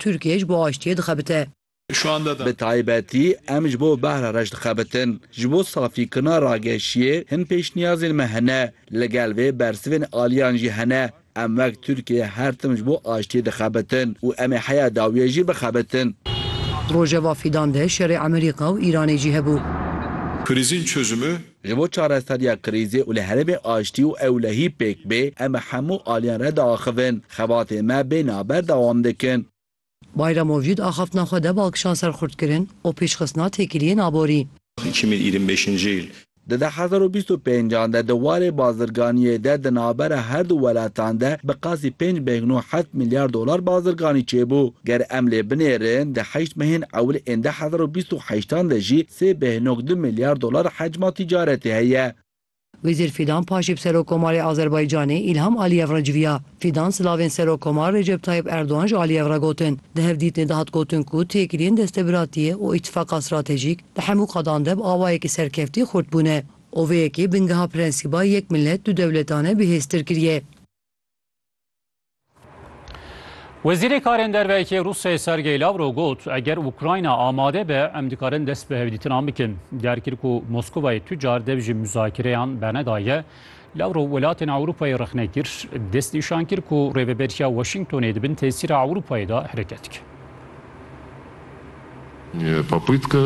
Tirkiye ji bo aştiyê dixebite. Bi taybetî em ji bo behra reş dixebitin. Ji bo safîkirina rageşiyê hin pêşniyazên me hene. Li gel vê bersivên aliyan jî hene. Em wek Tirkiye her tim ji bo aştiyê dixebitin û em ê heya dawiyê jî bixebitin. Rojeva Fîdan de şerê Emerîka û Îranê jî hebû. Krîzên çozimi Ji bo çareseriya krîzê û li herêmê aştî û ewlehî pêk bê, em bi hemû aliyên re diaxivin. Xebatên me bê naber dewam dikin. Bayram Ovcî di axaftina xwe de balkişan ser xurtkirin û pêşxistina têkiliyên aborî. Kimîl Îrîn Bêşincîl. Di du hezar û bîst û pênc an de di warê bazirganiyê de di navbera her du welatan de bi qasî pênc bêhn û heft milyar dolar bazirganî çêbû. Ger em lê binêrin di heşt mehên ewil ên du hezar û bîst û heşt an de jî Sê behnok du milyar dolar hecma tîcaretê heye. Wezîr Fîdan paşê bi Serokkomarê Azerbaycanê Îlham Aliyev re civiya. Fîdan silavên Serokkomar Recep Tayyip Erdogan ji Aliyev re gotin. Di hevdîtinê de hat gotin ku têkiliyên destebiratiyê û îtîfaqa stratejîk di hemû qadan de bi awayekî serkeftî xurt bûne û vê yekê bingeha prensîba yek milet du dewletan e bihêztir kiriye. Wezîrê Karên Derveyekê Rûsyayê Sergey Lavrov got, eger Ukrayna amade be em dikarin dest bi hevdîtinan bikin. Derkir ku Moskovayê tu car dev ji muzakereyan bernedaye. Lavrov welatên Ewropayê rexne kir, dest nîşan kir ku rêveberiya Washingtonê di bin tesîra Ewropayê de hereket dike. Popytka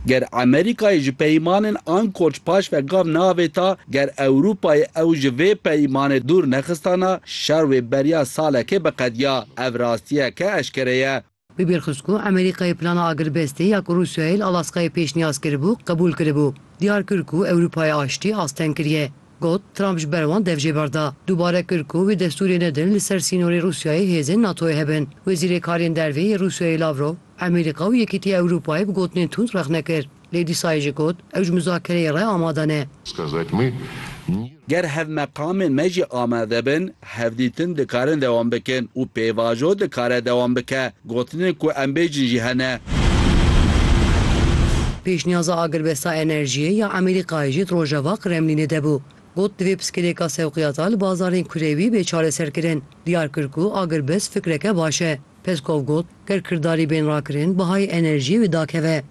Ger Amerîkayê ji peymanên Ankorc paş ve gav neavêta, ger Ewrûpayê ew ji vê peymanê dûr nexistana, şer wê beriya salekê biqediya. Ev rastiyeke eşkere ye. Wî bîr xist ku Amerîkayê plana agirbestê ya ku Rûsyayê li Alaskayê pêşniyaz kiribû, qebûl kiribû. Diyar kir ku Ewrûpayê aştî asteng kiriye. Got, Trump ji ber wan dev jê berda. Dubare kir ku wî destûrê nedin li ser sînorê Rûsyayê hêzên NATO'yê hebin. Wezîrê Kariyên Dervê yê Rûsyayê Lavrov, Emerîka û Yekîtiya Ewropayê bi gotinên tund rexne kir. Lê dîsayê jî got, ew ji muzakereyê re amade ne. Ger hevmeqamên me jî amade bin, hevdîtin dikarin dewam bikin û pêvajo dikare dewam bike. Gotinên ku em bêjin jî hene. Pêşniyaza agirbesta enerjiyê ya Amerîkayê jî di rojava Kremlînê de bû. Got divê piskilêka sewqiyata li bazarên kurewî bê çareserkirin. Diyar kir ku agirbest fikreke baş e. Peskov got, ger kirdarî bên rakirin bihayê enerjiyê wê dakeve.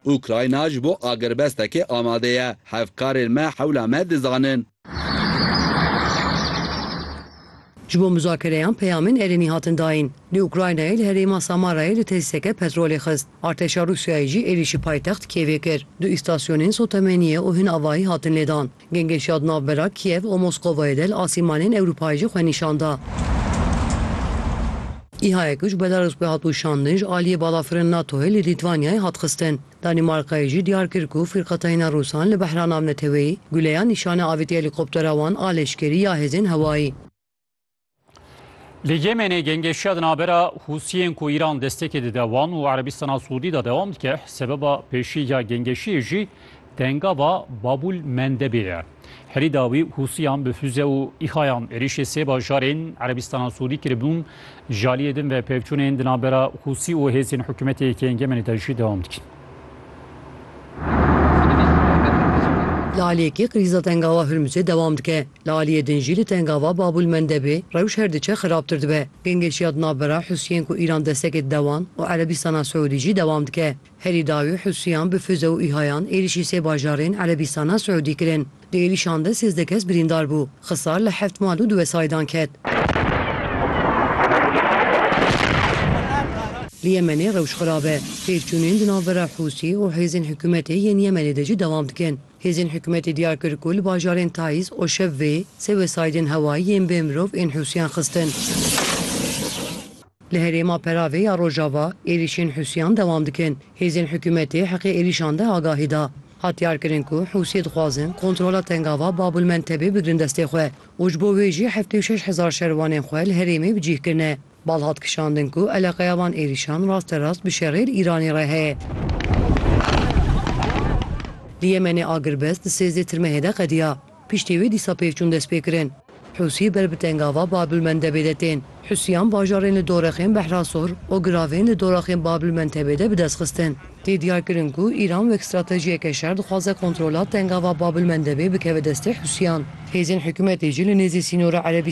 Ukrayna ji bo agirbestekê amade ye. Hevkarên me hewla me dizanin. Ji bo muzakereyan peyamên erênî hatin dayîn. Li Ukraynayê li herêma Samarayê li tesîseke petrolê xist. Artêşa Rûsyayê jî êrîşî paytext Kîevê kir. Du îstasyonên sotemeniyê û hin avahî hatin lêdan. Gengeş ya di navbera Kîev û Moskovayê de li asîmanên Ewropayê jî xwe nîşan da. Îhayek ji Belarûs ve hat û şandin ji aliyê balafirên NATO'yê li Lîtwanyayê hat xistin. Danîmarkayê jî diyar kir ku fîrqetayîna Rûsan li behra navneteweyî guleya nîşana avêtiya helîkoptera wan a leşkerî ya hêzên hewayî. Li Yemenê gengeşiya di navbera Hûsiyên ku Îran destekê dide wan û Erebistana Siûdî de dewam dike. Sebeba pêşî ya gengeşiyê jî dengava Babûl Mendebê ye. Herî dawî Hûsiyan bi fûze û îxayan êrîşê sê bajarên Erebîstana Sûdî kiribûn, ji aliyê din ve pevçûnên di navbera Hûsî û hêzên hikûmetê yekê ên Yemenê de jî dewam dikin. Li aliyê yekê krîza tengava Hurmuzê dewam dike, li aliyê din jî li tengava Babûlmendebê rewş her diçe xirabtir dibe. Gengeşiya di navbera Hûsiyên ku Îran destekê dide wan û Erebîstana Siûdî jî dewam dike. Herî dawî Hûsiyan bi fize û îhayan êrîşî sê bajarên Erebîstana Siûdî kirin. Di êrîşan de sêzdeh kes birîndar bû. Xisar li heft mal û di wesayîdan ket. Li Yemenê rewş xirab e. Têkçûnên di navbera Hûsî û hêzên hikûmetê yên Yemenê de jî dewam dikin. Hêzên hikûmetê diyar kir ku li bajarên Taiz û Şevvê sê wesaîdên hewayî yên bê mirov ên Hûsiyan xistin. Li herêma peravê ya Rojava êrîşên Hûsiyan dewam dikin. Hêzên hikûmetê heqê êrîşan de agahî da. Hat diyarkirin ku Hûsiyê dixwazin kontrola tengava Bab el Mentebê bigirin destê xwe û ji bo wê jî heftê û şeş hezar şervanên xwe li herêmê bi cîh kirine. Bal hat kişandin ku eleqeya van êrîşan rasterast bi şerê li Îranê re heye. Li Yemenê agirbest di sêzdeh tirmehê de qediya. Piştî wê dîsa pêvçûn dest pê kirin. Hûsî ber bi tengava Babilmendebê de tên. Hûsîyan bajarên li dorexên Behrasor û giravên li doraxên Babilmentebê de bi dest xistin. Tê diyar kirin ku Îran wek stratejiyeke şer dixwaze kontrola tengava Babilmendebê bikeve destê Hûsîyan. Hêzên hikûmetê jî li nêzî sînora Erebîstanê